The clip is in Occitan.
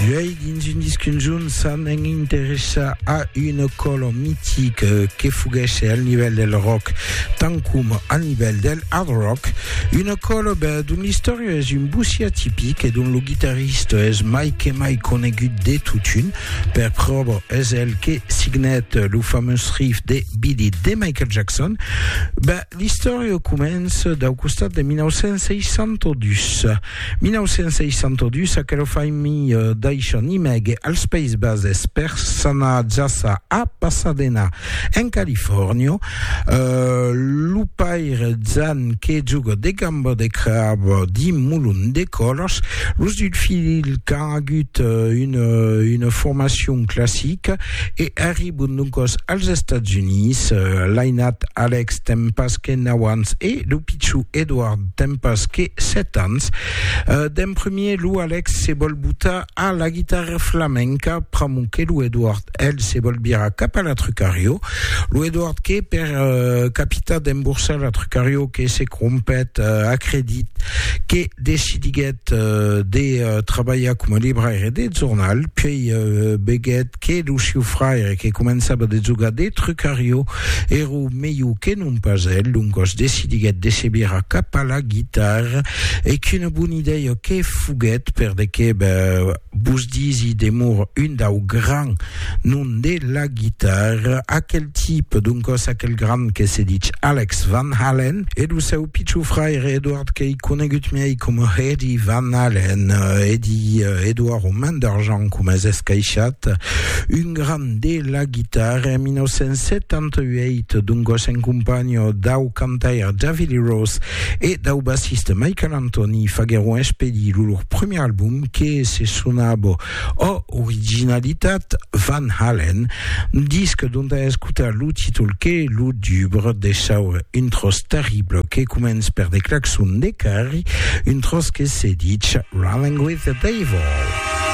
Duei dins un disc conjunt s'an en interessar a una color mitic que foguèsse al nivèl del rock tant coma al nivèl del hard rock, una color ben, dont l'istòria es un bocí atipic e dont lo guitarrista es mai que mai conegut de totun. Per pròva, es el que signèt lo famós riff de Beat It de Michael Jackson. Ben, L'istòria comença dau costat de 1962. 1962, aquela familha daishan imègue als Païses Bases per s'anar jaça a Pasadena, en Califòrnia. Lo paire Jan que joga de gamba de crab dins molon de còlas. Los dus filhs qu'an agut una formacion classica. e arribon doncòs als Estats Units. L'ainat Alex ten pas que nau ans e lo pichon Edward ten pas que sèt ans. D'en premier, lo Alex se vòl botar a la guitarra flamenca, pr'amor que lo Edward, el, se vòl virar cap a la Trucario. Lo Edward que, per capitar d'emborsar la Trucario, que se crompèt, acredit que decidiguèt de trabalhar coma libraire de jornal, puèi veguèt que lo siu fraire que començava de jogar de trucarió èra melhor que non pas el, doncas decidiguèt de se virar cap a la guitarra e qu'una bona idèia que foguèt per de que Vos disi demor un dau gran nom de la guitarra, aquel tipe, doncòs aquel grand que se dich Alex Van Halen, e lo seu pichon fraire Edward qu'ei conegut miei coma Eddie Van Halen, Eddie, Edward o Man d'Argent coma es escaishat, un grand de la guitarra en 1978, doncòs en companha dau cantaire David Lee Roth e dau bassiste Michael Anthony faguèron expedir lo lor premier album, que se sonava O Originalitat Van Halen, disc dont a escotar lo títol que lo dubre de saure un tròç terrible que comença per de claxons de carri, un tròç que se ditz Running With The Devil.